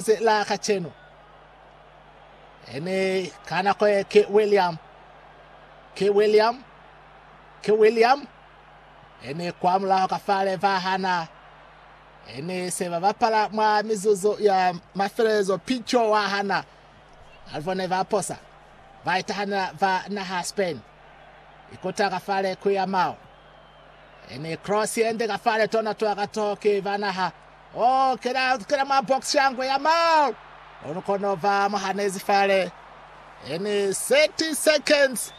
ze la kacenu. Ene ka nako ye ke William, ke William, ke William, ene kwa mulaho ka fale ba hana. Ene se ba bapala mwa mizuzu ya mafelelezo pico wa hana. Alvo ne ba posa, ba itahanela ba naha Spain, ikota ka fale ku ya mao. Ene cross yende ka fale tona twa ka to ki ba naha. Oh kena kena mwa box shangwe ya mal. Onu kono ba mu hanezi fale. Ene 30 seconds.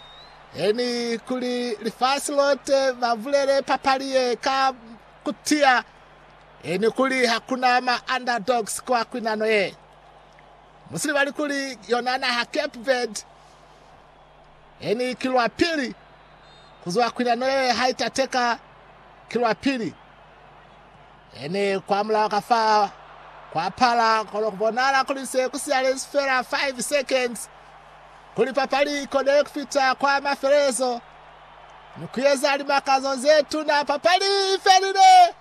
Ene kuli lifasi lote ba bulele papali ye ka kutia. Ene kuli hakuna ma underdogs kwa kwinano ye. Musilibali kuli yona naha Cape Verde He ni ki lwa pili ku zwa kwinano ye hai tateka, ki lwa pili. He ni kwa mulaho ka fa kwa pala, kono ku bonahala kuli se ku sialezi fela 5 seconds kuli papali i konele ku fita kwa mafelelezo ni ku eza limakazo ze tuna. Papali i felile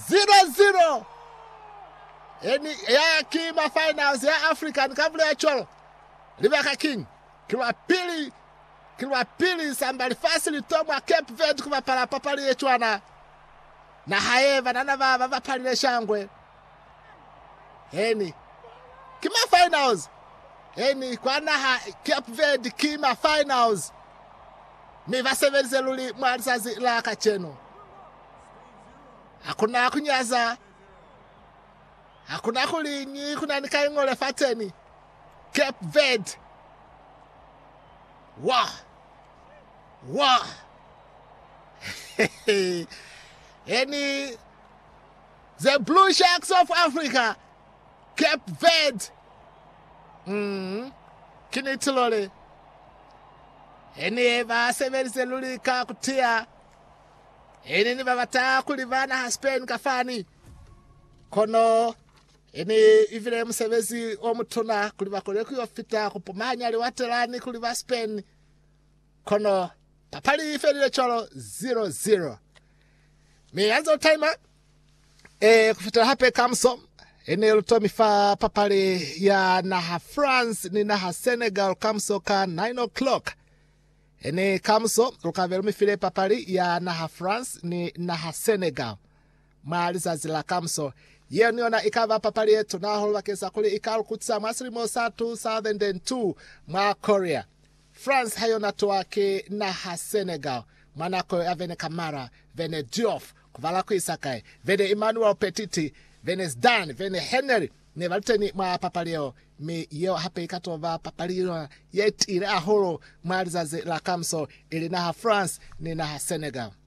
0-0. He ni, ya ki ma finals ya African, ka bulela cwalo. Libaka kiñi? Ki lwa pili, ki lwa pili samba lifasi li to mwa Cape Verde ku bapala papali ye cwana. Na hae banana ba ba bapalile shangwe. Eeni, ki ma finals. Eeni, kwa naha Cape Verde ki ma finals. Mi ba sebelize luli mwa lizazi la kacenu. Hakuna kunyaza. Hakuna kuliñi kunani ka ingo lefateni Cape Verde. Wah! Wah! Eni The Blue Sharks of Africa, Cape Verde. Mm, kini tilole. Eni eba sebelize luli ka kutia. Eni ni babata kulibana ha Spain kafani. Kono i ne i bile musebezi o mutuna kuli ba kone ku yo fita ku pumanya liwate lani kuli ba Spain, kono papali i felile cwalo 0-0. Mi ya nze u taima e ku fitela hape kamuso i ne lu tomi fa papali ya naha France ni naha Senegal kamuso ka 9 o'clock. I ne kamuso lu ka be lu mi file papali ya naha France ni naha Senegal. Mwa lizazi la kamuso, yenu yona ikaba papali yetuna hahulu bakeng sa kuli ika lukutisa mwa silimo sa 2002 mwa Korea. France ha yona tuwa ki naha Senegal mwa nako yo ya Vene Camara, Vene Diouf, kubala kuisa kai, Vene Emmanuel Petit, Vene Zidane, Vene Henry ne bali teni mwa papali yeo, mi yeo hape ika to ba papali yona yetiile hahulu mwa lizazi la kamuso, ili naha France ni naha Senegal.